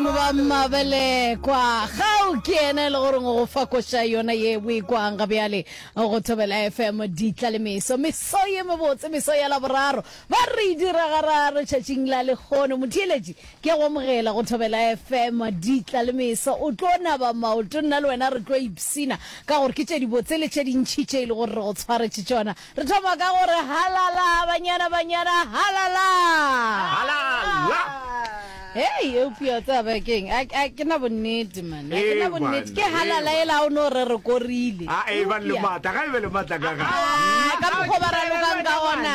Ba mabelekwa, kgao ke yena e le gore go fa koša yona ye o e kwang ga bjale go Thobela FM ditla le meso. Meso ye mebotse, meso ya laboraro, ba re e dira gararo tšatšing la lekgono. Motheeletši ke a go amogela go Thobela FM ditla le meso. O tlo naba maoto, nna le wena re tlo ipshina ka gore ke tše dibotse le tše dintšhi tše e le gore re go tshwaretše tšona. Re thoma ka go re halala, banyana, banyana, halala! Halala! Hei, eupša o tseba ba keng, a a ke na bonnete man, a ke na Ee, bonnete, ke banna, halala ee, e la o no re re korile. a e ba le Eupša- matla ga e be le matla ka ga Ah, ka mokgwa ba ralokang ka gona,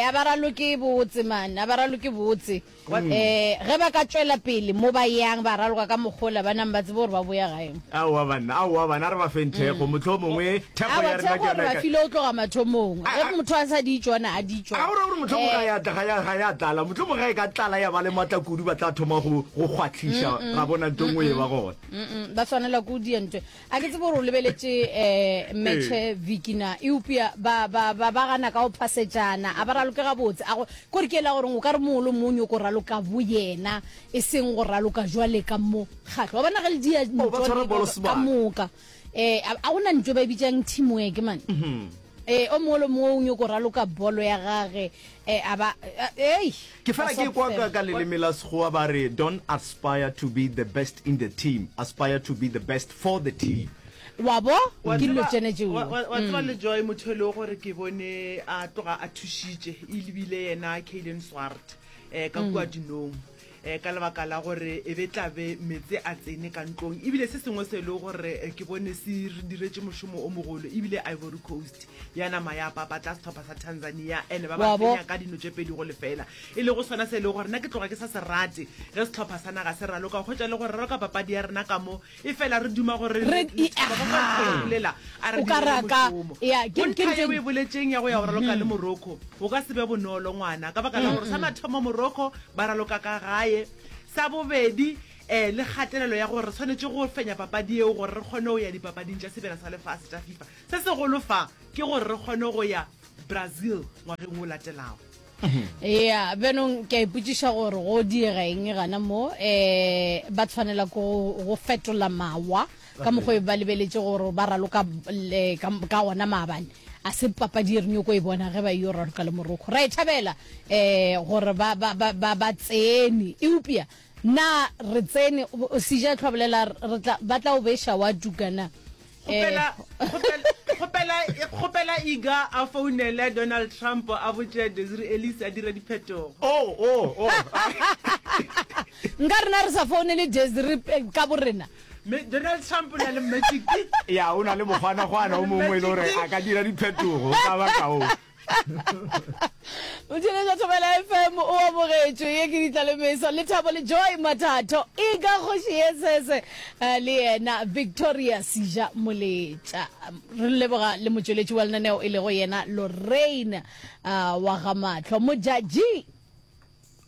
a ba raloke botse man, a ba raloke botse. Ge ba ka tšwela pele mo ba yang, ba raloka ka mokgola ba nang ba tsebe gore ba boya gae. Aowa banna, aowa bana, a re ba feng thekgo, mohlomongwe thekgo ya rena ke yona e ka. Aowa, thekgo re ba file go tloga mathomong. Ge motho a sa di tšona, a di tšwa. A o ra gore mohlomongwe ga ya tla, ga ya tlala. Mohlomongwe ge e ka tlala ya ba le matla kudu, ba tla thoma go kgwatliša, ra bona ntho e nngwe e ba gona. Ba swanela ke go dia ntho e. a ke tsebo gore o lebeletše um metšhe vikina eupša ba ba ba ba gana ka go phasejana a ba raloke gabotse a go kore ke ela goreng o ka re mongwe le mongwe o nyoko raloka bo yena e seng go raloka jwale ka mo kgatlho wa bona ge le dia Oh, ba tshwara bolo ntho sebaka. ka moka um a gona ntho e ba e bitsang teamwork mane um o mongwe le mongwe o nyoko raloka bolo ya gage E a ba, ei! Ke fela ke kwa ka ka leleme la Sekgowa ba re don't aspire to be the best in the team, aspire to be the best for the team. Wa bo, ke dilo tšene tšeo. Wa, wa, wa tseba le Joy motho e le gore ke bone a tloga a thušitše, e lebile yena Kaylen Swart, eh, ka kua dinong. um ka lebaka la gore e be tlabe metse a tsene ka ntlong ebile se sengwe se e le gore eh, ke bone se re diretse mošomo o mogolo ebile ivory coast ya nama ya papatla setlhopha sa tanzania and ba ba fenya ka dino tse pedi go lefela e le go swana se e le gore nna ke tloga ke sa se rate ge setlhopha sa naga se raloka go kgwetsa le gore raloka papadi ya rena ka mo Efela re duma gore re Re- lethabo go ka Aha. bolela a re O ka direle raka- mošomo. ya, ke- Go ke- ntha ye ke- o e boletšeng ya go ya go raloka le morocco go ka se be bonolo ngwana ka baka la gore sa mathomo morocco ba raloka ka gae sa bobedi um le kgatelelo ya gore re tshwanetse go fenya papadi eo gore re kgone go ya dipapading tša sebjana sa lefase tša fifa se segolo fa ke gore re kgone go ya brazil ngwageng o latelago ya benong ke a ipotsiša gore go diega eng gana mo um ba tshwanela ko go fetola mawa ka mokgwa e ba lebeletse gore ba raloka ka ona maabane a se papadi e renyoko e bona ge ba yo raloka le moroko ra e thabela um gore ba tsene eupša Na re tsene Sejatlho a bolela re tla ba tla o beša wa tuka na? Kgopela, kgopela, kgopela, kgopela Iga a founele Donald Trump a botše Desiree Ellis a dire diphetogo. Oh, oh, oh. Nka rena re sa founele Desiree ka borena. Me, Donald Trump o na le magic. Ya, o na le mokgwana-kgwana o mongwe e le gore a ka dira diphetogo ka baka o. motšhene ja thobela fm o abogetšwe ye ke ditlalemeso le thabo le joy mathatho e ka kgoši ye sese eh, le yena victoria sija moletša re leboga le motšweletši wa lenaneo e lego yena lorraine ah, wa ga matlho mojaji